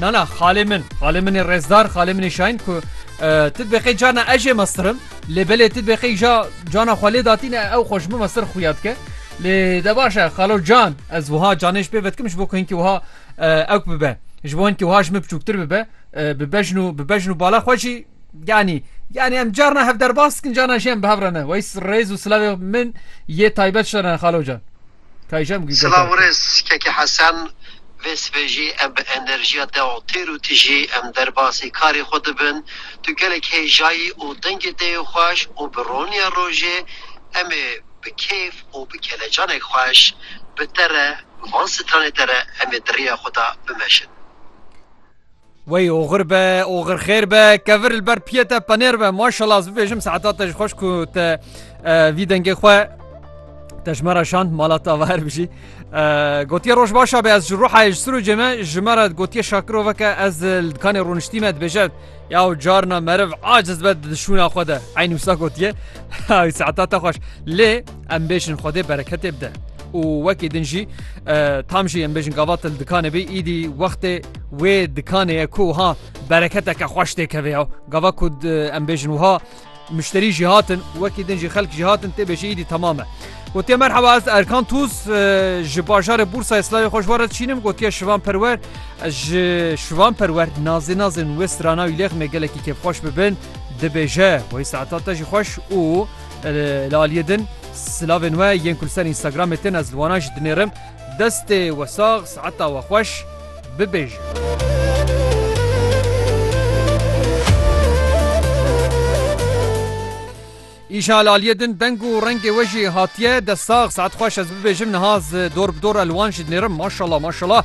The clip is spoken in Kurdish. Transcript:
Na na xalê min, xalê min ê rêzdar, xalê min ê şayin ku tu dibeqê carna ez jê mestirim lê belê tu dibeqê îja cana xwe lê datîne ew xwe ji min mestir xuya dike. Lê de baş e xalo can ez wiha canê ji pê vedikim ji bo ku hinkî wiha ewk bibe ji bo hinkî wiha ji min biçûktir bibe bi bejn û bi bejn û bala xwe jî yanî yanî em carna hev derbas dikin carna jî em bi hev re ne weys rêz û silavê min yê taybet ji te re ne xalo can. Kayjam gî Silav û rêz Keke Hesen Vê sibê jî em bi enerjiya te û têr û tijî em derbasî karê xwe dibin. Tu gelek hêjayî û dengê te yê xweş û bi roniya rojê em ê bi kêf û bi kelecanek xweş bi te re van stranê te re em ê di rêya xwe de bimeşin. Wey oxir be oxir xêr be kevir li ber piyê te penêr be maşallah ez bibêjim saeta te ji xweş ku te vî dengê xwe te ji me re şand mala te ava her bijî gotiye roj başa be ez ji ruhayê ji sirûcê me ji me re gotiye şakiroveke ez li dikanê rûniştî me dibêje ya û carna meriv aciz be di dişûna xwe de eyn wisa gotiye saeta te xweş lê Em bêjin Xwedê bereketê bide. û wekî din jî tam jî em bêjin gavat li dikanê bî îdî wextê wê dikanê ye ku ha bereketeke xweş tê kevê ya gava ku em bêjin wiha müşterî jî hatin wekî din jî xelk jî hatin tê bêjî îdî tamam e. Gotiye merheba ez Erkan Tuz ji bajarê Bursa Slavê xweş were çînim gotiye şivan perwer ez ji şivan perwer nazê nazin wê strana wî lêxmê gelekî kêfxweş bibin dibêje wê saeta te jî xweş û Li aliyê din silavên we yên ku li ser Instagramê tên ez li wanan jî dinêrim. Destê we sax, siheta we xweş. Bibêjin. Îşa li aliyê din deng û rengê we jî hatiye. Dest sax, sihet xweş ez bibêjim niha ez dor bi dor li wan jî dinêrim. Maşallah maşallah.